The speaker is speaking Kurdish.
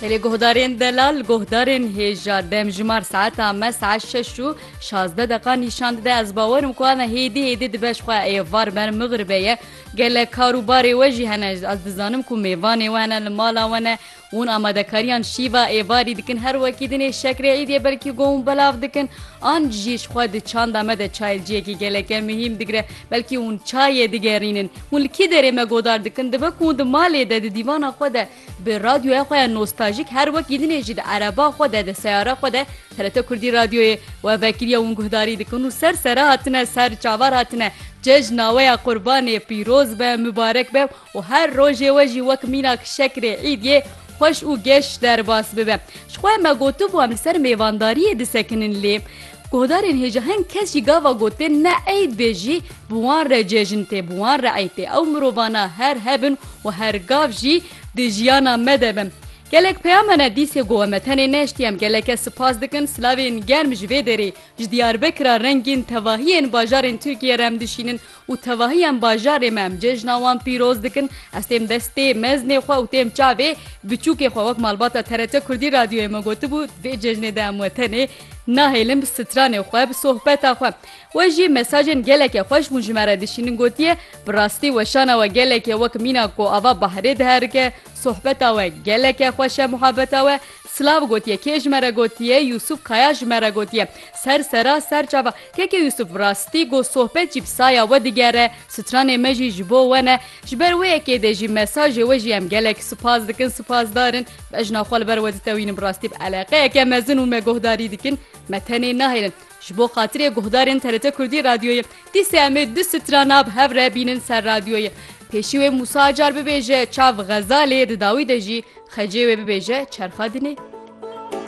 Li guhdarên delal, guhdarên hêja demjimar saeta me saet şeş û şazdeh deqa nîşan dide. Ez bawer im ku ava hêdî hêdî dibe ji xwe êvar ber mixribe ye. Gelek kar û barê we jî hene. Ez dizanim ku mêvanê we hene li mala we ne û hûn amadekariyan şîva êvarî dikin. Her wekî dinê şekrê îdê belkî got hûn belav dikin an jî ji xwe di çanda me de çayê ciyekî gelek mihîm digire. Belkî hûn çayê digerînin. Hûn li kî derê me godar dikin? Dibe ku hûn di malê de, di dîvana xwe de bi radyoya xwe ya nostajîk her wekî din ê jî di ereba xwe de, di seyara xwe de TRT Kurdî Radyoyê we vekiriya hûn guhdarî dikin û ser sere hatine, ser çavar hatine cejn naweya Qurbanê pîroz be, mibarek be û her rojê we jî wek mînak şekrê îdyê xweş û geş derbas bibe. Ji xwe me gotibû em li ser mêvandariyê disekinin lê, Guhdarên hêja hin kes jî gava gotin ne eyd bê jî bi wan re cejn tê, bi wan re eyd tê. Ew mirovana her hebin û her gav jî di jiyana me de bin. Gelek peyama ne dîsê gowe me tenê neştî em geleke sipas dikin silavên germ ji vê derê ji Diyarbekira rengîn tevahiyên bajarên Tirkiyê re em dişînin Û tevahî em bajarê me, em cejna wan pîroz dikin. Ez têm destê meznê xwe û têm çavê biçûkê xwe. Wek malbata TRT Kurdî Radyoyê me gotibû, di vê cejnê de em we tenê nahêlin bi stranê xwe, bi sohbeta xwe. We jî mesajên gelekê xweş bûn ji me re dişînin. Gotiye, Bi rastî weşana we gelekê wek mîna ku ava bahrê diherike, sohbeta we geleke xweş e, muhabeta we Silav gotiye, kê ji me re gotiye, Yûsûf Kaya ji me re gotiye, ser sera ser çava, keke Yûsûf bi rastî got sohbet jî bi saya we digere, stranê me jî ji bo we ne, ji ber wê yekê dê jî mesajê we jî em gelek spas dikin, spasdar in, bejna xwe li ber we ditewînin bi rastî bi eleqeyeke mezin û me guhdarî dikin, me tenê nahêlin. Ji bo xatirê guhdarên TRT Kurdî Radyoyê, TSM'ê du strana bi hev re bînin ser radyoyê. Pêşî wê Mûsa Acar bibêje çav Xezalê, di dawî de jî xecê wê bibêje çerxa dinê.